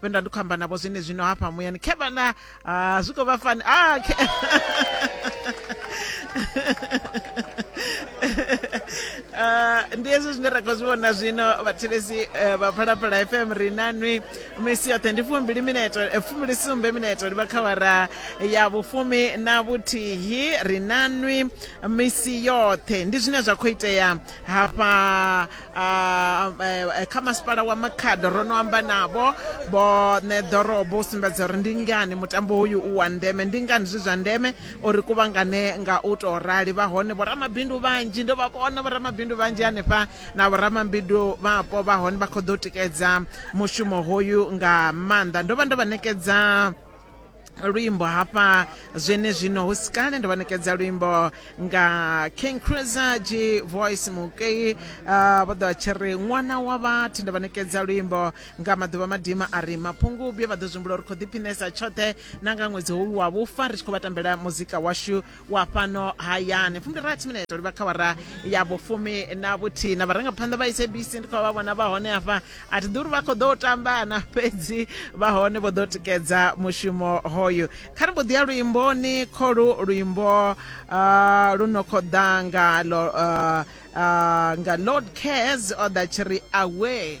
vhe nda ndi khou amba navho zwine zwino hafha muyani khe vhana ah, zwi khou vha fani a ah, khe Eh, ndi hezwi zwine ra khou zwi vhona zwino vhathetshelesi eh, vha phalaphala fm ri na nwi misi yoṱhe ndi fumbili mineto eh, fumbili sumbe mineto ndi vha khawara ya vhufumi na vhuthihi ri na nwi misi yoṱhe ndi zwine zwa khou itea hafha Ah, eh, eh, kha masipala wa makhado ro no amba navho vho ṋe ḓorobo u sumbedza uri ndi ngani mutambo uyu u wa ndeme ndi ngani zwi zwa ndeme uri kuvhangane nga u tou rali vha hone vhoramabindu vhanzhi ndo vha vhona vhoramabindu vhanzhi hanefha na vhoramabindu vhapo vha hone vha khou ḓo tikedza mushumo hoyu nga maanḓa ndo vha ndo vha ṋekedza luimbo hafha zwenezwino hu si kale ndo vhanekedza luimbo nga king cruiser g voice mukei uh, vho ḓo tshi ri ṅwana wa vhathu ndo vhanekedza luimbo nga maḓuvha madima a ri mapungubye vha ḓo zwimbula uri khou ḓiphinesa tshoṱhe na nga ṅwedzi hoyu wa vhufa ri tshi khou vha tambela muzika washu wa fhano hayani fumbilirathi minete livha kha wara ya vhufumi na vhuthihi na vharangaphanḓa vha sabc ndi khou vha vhona vha hone hafha a thi ḓuri vha khou ḓo tambana fhedzi vha hone vho ḓo tikedza mushumo hoyu kha ri mbo ḓi ya luimboni kholu luimbo uh, lu no khou ḓa nga lo uh, uh, nga lord cares o ḓa tshi ri away